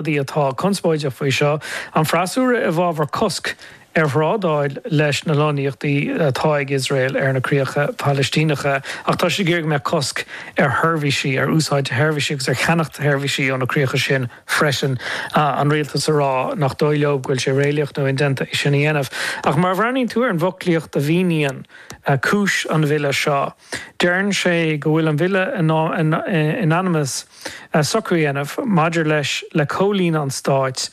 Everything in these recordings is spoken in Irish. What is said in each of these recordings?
Rudaí atá conspóideach faoi seo, an freasúra i bhfabhar cosc ar thrádáil leis na lonnaíochtaí atá ag Iosrael ar na críocha Palaistíneacha ach tá siad ag iarraidh go mbeadh cosc ar sheirbhísí, ar úsáid sheirbhísí agus ar cheannacht seirbhísí ó na críocha sin freisin, an rialtas ag rá nach dóigh leo go bhfuil sé réalaíoch nó indéanta é sin a dhéanamh. Ach má bhreathnaíonn tú ar an bhfoclaíocht a mhíníonn cúis an bhille seo, Deireann sé go bhfuil an Bille in ainm is socrú a dhéanamh maidir leis le comhlíonadh an Stáit,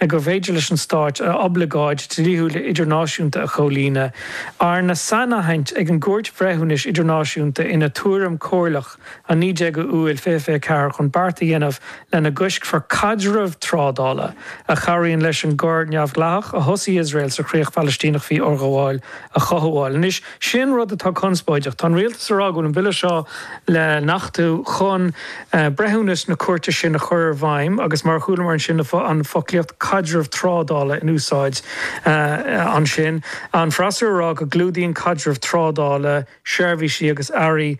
gur féidir leis an Stát a oibleagáid dhlíthiúil idirnáisiúnta a chomhlíonadh, arna sainaithint ag an gCúirt Bhreithiúnais Idirnáisiúnta ina tuairim chomhairleach an 19 Iúil 2024 chun beart a dhéanamh lena gcoiscfear caidreamh trádála a chabhraíonn leis an gcor neamhdhleathach a thosaigh Iosrael sa Chríoch Phalaistíneach faoi fhorghabháil a chothabháil. Anois, Sin rud atá conspóideach. Tá an Rialtas ag rá go bhfuil an Bille seo le n-achtú chun breithiúnas na cúirte sin a chur i bhfeidhm agus mar a chualamar ansin an foclaíocht 'caidreamh trádála' in úsáid ansin. An freasúra ag rá go gclúdaíonn 'caidreamh trádála' seirbhísí agus earraí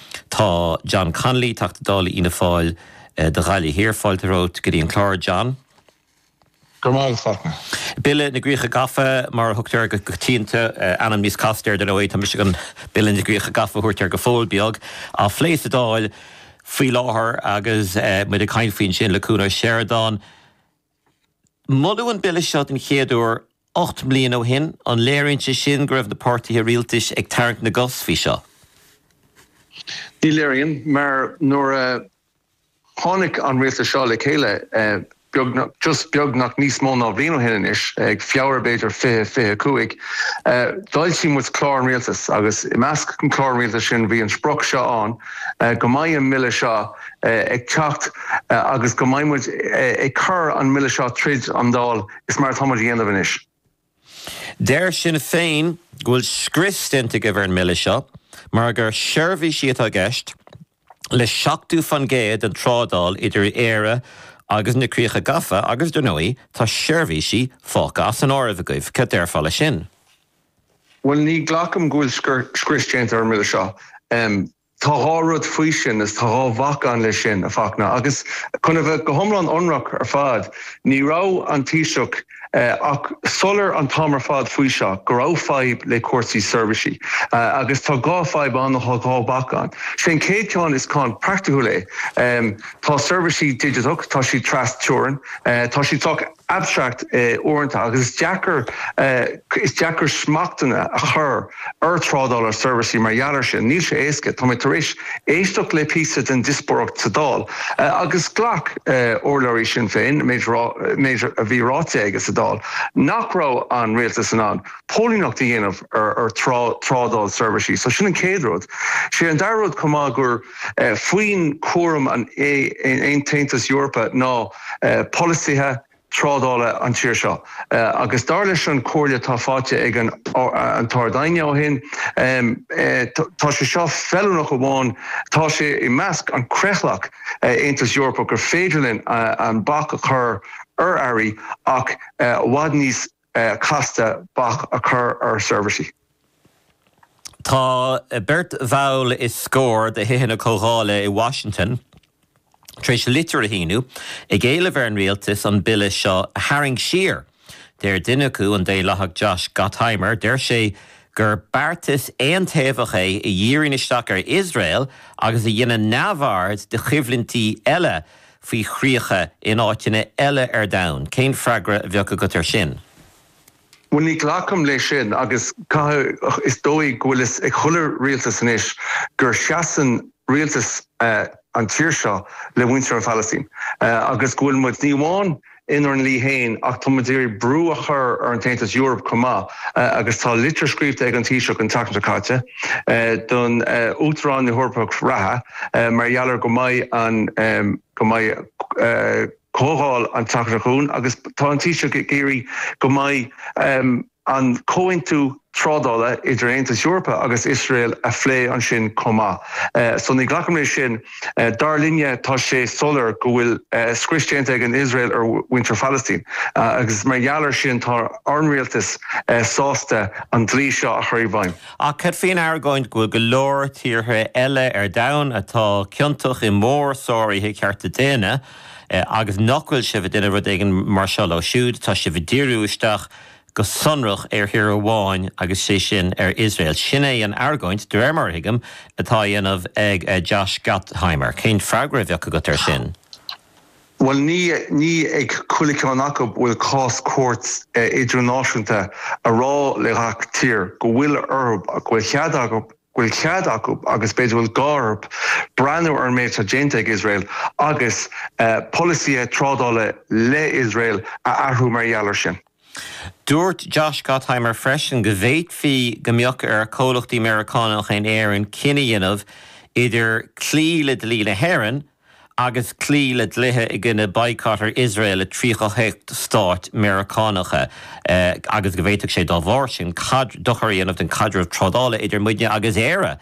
Tá John Connolly, Teachta Dála Fhianna Fáil do Ghaillimh Thiar, fáilte romhat go dtí an clár, John. Go raibh maith agat, Fachtna. Bille na gCríocha Gafa, mar a thugtar air go coitianta, ainm níos casta air, dar ndóigh, tá mise chun Bille na gCríocha Gafa a thabhairt air go fóill beag, á phlé sa Dáil faoi láthair agus muid ag caint faoi ansin, le Cuan Ó Seireadáin. Moladh an Bille seo den chéad uair ocht mbliana ó shin. An léiríonn sé sin go raibh na páirtithe rialtais ag tarraingt na gcos faoi seo? Ní léiríonn, mar nuair a tháinig an rialtas seo le chéile beagnach, just beagnach, níos mó ná bliain ó shin anois, ag Feabhra, b'fhéidir, 2025, d'fhoilsigh muid Clár an Rialtais agus i measc an Chláir Rialtais sin bhí an sprioc seo ann, go mbeidh an mBille seo, ag teacht agus go mbeidh muid ag cur an mBille seo tríd an Dáil. Is mar atá muid ag déanamh anois. Deir Sinn Féin go bhfuil scrios déanta agaibh ar an mBille seo mar gur seirbhísí atá i gceist le 70 faoin gcéad den trádáil idir Éire agus na Críocha Gafa agus, dar ndóigh, tá seirbhísí fágtha as an áireamh agaibh. Cad déarfá leis sin? Bhuel, ní ghlacaim go bhfuil scrios déanta ar an mBille seo. Tá dhá rud faoi sin, is tá dhá bhac ann leis sin, a Fachtna, agus chun a bheith go hiomlán ionraic ar fad, ní raibh an Taoiseach ach soiléir an t-am ar fad faoi seo go raibh fadhb le cúrsaí seirbhísí. Agus tá dhá fhadhb ann nó tá dhá bhac ann. Sé an chéad cheann, is ceann praiticiúil é. Tá seirbhísí digiteach, tá siad trasteorann, tá siad sách. abstract uaireanta agus is deacair is deacair smachtanna a chur ar trádáil ar seirbhísí mar gheall air sin. Níl sé éasca. Tá mé tar éis éisteacht le píosa den diospóireacht sa Dáil agus ghlac urlabhraí Sinn Féin an méid méid a bhí ráite aige sa Dáil nach raibh an Rialtas in ann póilíneacht a dhéanamh ar trádáil seirbhísí. So sin an chéad rud. Sé an dara rud chomh maith gur. faoin cúram an tAontas Eorpa ná polasaithe trádála an tír seo agus dar leis an chomhairle atá faighte ón tArd-Aighne ó shin tá sé seo feiliúnach amháin tá sé i measc an creathlach Aontas Eorpach gur féidir linn an bac a chur ar earraí ach i bhfad níos casta bac a chur ar seirbhísí. Tá beirt bhall is scór de Thithe na Comhdhála i Washington tar éis litir a shíniú ag éileamh ar an rialtas an bille seo a tharraingt siar. Deir duine acu, an Daonlathach Josh Gottheimer, deir sé gur beartas aontaobhach é a dhíríonn isteach ar Iosrael agus a dhéanann neamhaird de choimhlintí eile faoi chríocha in áiteanna eile ar domhan? Cén freagra a bheadh agat air sin? Bhuel, ní ghlacaim leis sin agus caithfidh mé a rá, is dóigh go bhfuil fhios ag chuile rialtas anois gur seasann rialtas an tír seo le muintir an Phalaistín agus go bhfuil muid, ní amháin inár ndlí féin ach tá muid ag iarraidh brú a chur ar an tAontas Eoraip chomh maith agus tá litir scríobhta ag an Taoiseach an tseachtain seo caite don Uachtarán na hEorpach reatha mar gheall ar go mbeidh an go mbeidh comhdháil an tseachtain seo chugainn agus tá an Taoiseach ag iarraidh go mbeidh an comhaontú trádála idir Aontas Eorpa agus Iosrael a phlé ansin chomh maith. So ní ghlacaim leis sin. Dar linne, tá sé soiléir go bhfuil scrios déanta ag an Iosrael ar mhuintir Phalastín agus mar gheall ar sin tá ár rialtas sásta an dlí seo a chur i bhfeidhm. Ach cad faoin argóint go bhfuil go leor tíortha eile ar domhan atá ciontach i mórsháruithe cearta daonna agus nach bhfuil sibh ag déanamh rud éigin mar seo leo siúd, tá sibh ag díriú isteach go sonrach ar thír amháin agus sé sin ar Iosrael. Sin é an argóint, de réir mar a thuigim, atá á dhéanamh ag Josh Gottheimer. Cén freagra a bheadh agat air sin? Bhuel, ní ní ag chuile cheann acu a bhfuil cás cúirt idirnáisiúnta a rá le gach tír go bhfuil orthu, go bhfuil cead acu bhfuil cead acu, agus b'fhéidir bhfuil gá orthu, breathnú ar an méid atá déanta ag Iosrael agus polasaithe trádála le Iosrael a athrú mar gheall air sin. Dúirt Josh Gottheimer freisin go bhféadfaí go mbeadh ar chomhlachtaí Meiriceánacha in Éirinn cinneadh a dhéanamh idir cloí le dlí na hÉireann agus cloí le dlíthe i gcoinne baghcat ar Iosrael i 38 stát Meiriceánacha agus go bhféadfadh sé dá bharr sin dochar a dhéanamh don chaidreamh trádála idir muidne agus Éire.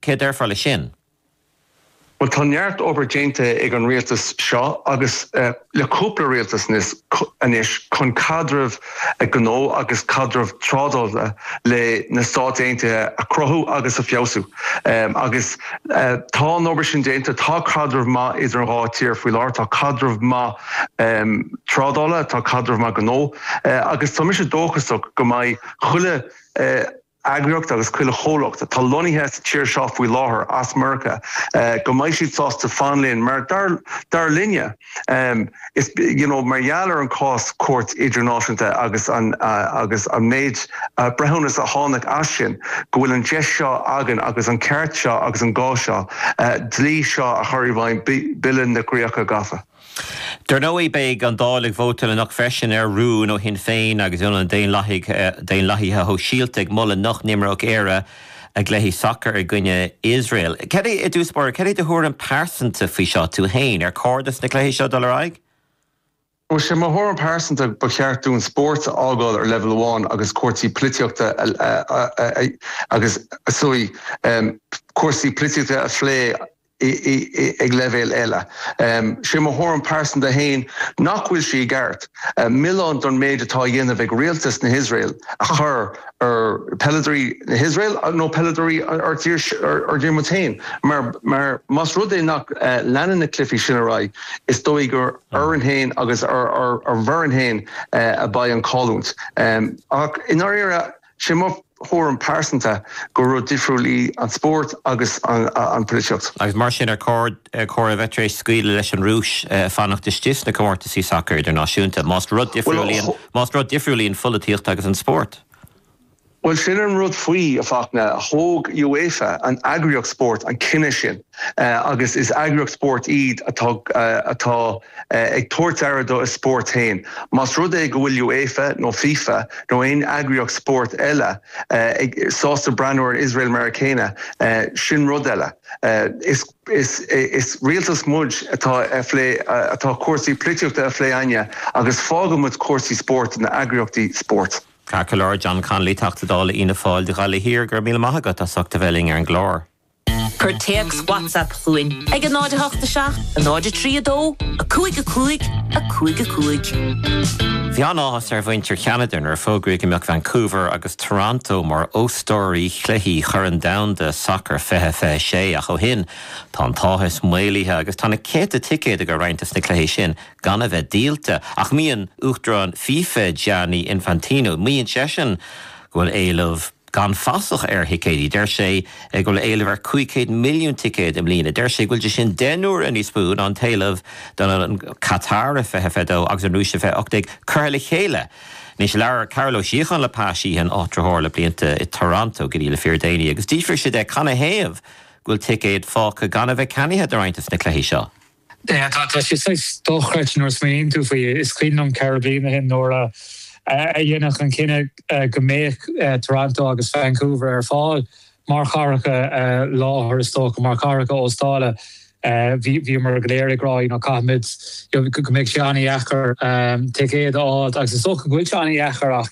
Cad a déarfá leis sin? Bhuel, tá neart obair déanta ag an rialtas seo agus. le cúpla rialtas anois chun caidreamh gnó agus caidreamh trádála le na Stáit Aontaithe a chruthú agus a fheabhsú agus tá an obair sin déanta. Tá caidreamh maith idir an dhá tír faoi láthair, tá caidreamh maith trádála, tá caidreamh maith gnó agus tá mise dóchasach go mbeidh chuile eagraíocht agus chuile chomhlacht atá lonnaithe sa tír seo faoi láthair as Meiriceá go mbeidh siad sásta fanacht linn mar dar linne is you know mar gheall ar an cás cúirte idirnáisiúnta agus an agus an méid breithiúnas a tháinig as sin go bhfuil an deis seo againn agus an ceart seo agus an gá seo dlí seo a chur i bhfeidhm Bille na gCríoch Gafa. Dar ndóigh, beidh an Dáil ag vótáil anocht freisin ar rún ó Shinn Féin agus ó na Daonlathaithe Sóisialta ag moladh nach n-imreodh Éire a cluichí sacair i gcoinne Iosrael. I dtosach báire, cad é do thuairim pearsanta faoi seo, tú féin? Ar chóir dos na cluichí seo dul ar aghaidh? Bhuel, sé mo thuairim pearsanta, ba cheart dúinn spórt a fhágáil ar leibhéal amháin agus cúrsaí polaitíochta a phlé. ag leibhéal eile. Sé mo thuairim pearsanta fhéin nach bhfuil sé ceart milleán don méid atá á dhéanamh ag Rialtas na hIosrael a chur ar peileadoirí na hIosrael nó peileadoirí ár dtír muid fhéin mar más rud é nach leanann na cluifí sin ar aghaidh is dóigh gur orainn fhéin agus ar ár bhfoireann fhéin a bheidh an chailliúint. Ach i ndáiríre. Sé mo thuairim pearsanta gur rud difriúil í an spórt agus an pholaitíocht. Agus mar sin ar chóir a bheith tar éis scaoileadh leis an Rúis fanacht istigh sna comórtaisí sacair idirnáisiúnta más rud difriúil í an pholaitíocht agus an spórt? Bhuel sin an rud faoi, a Fhachtna, thóg UEFA, an eagraíocht spóirt, an cinneadh sin. agus is eagraíocht spóirt iad atá atá ag tabhairt aire dá spórt féin. Más rud é go bhfuil UEFA nó FIFA nó aon eagraíocht spóirt eile sásta breathnú ar Iosrael mar an gcéanna, sin rud eile. Is is is rialtas muid atá a phlé atá cúrsaí polaitíochta á phlé againne agus fágfaidh muid cúrsaí spóirt do na eagraíochtaí spóirt. Ceart go leor, John Connolly, Teachta Dála Fhianna Fáil do Ghaillimh Thiar, go raibh míle maith agat as ucht a bheith linn ar an gclár. Cuir téacs WhatsApp chugainn ag 08 7 0 3 2 5 5 5 5. Bhí an-áthas ar mhuintir Cheanada nuair a fógraíodh go mbeadh Vancouver agus Toronto mar óstóirí chluichí Chorn Domhanda Sacair 2026 ach ó shin tá an t-áthas maolaithe agus tá na céadta ticéad agur roinnt dos na cluichí sin gan a bheith díolta ach maíonn Uachtarán FIFA Gianni Infantino maíonn seisean go bhfuil éileamh Gan fasach ar thicéidí, deir sé go bhfuil éileamh ar 500 milliún ticéad i mbliana. Deir sé go bhfuil sé sin deich n-uaire níos mó ná an t-éileamh don Qatar 2022 agus an Rúis 2018 curtha le chéile. Anois labhair Cárthach Ó Síocháin le Pa Sheehan, áitritheoir le blianta i Toronto go dtí le fíor déanaí agus d'fhiafraigh sé de canathaobh go bhfuil ticéid fágtha gan a bheith ceannaithe do roinnt des na cluichí seo. Tá sé saghas dochreidte nuair a smaoiníonn tú faoi. Is cuimhin liom ceithre bliana ó shin nuair a deineadh an cinneadh go mbeadh Toronto agus Vancouver ar fáil mar chathracha láthair, is dócha, mar chathracha óstála. Bhíomar go léir ag rá caithfimid, go mbeidh sé an-dheacair ticéad a fháil agus is dócha go bhfuil sé an-dheacair ach,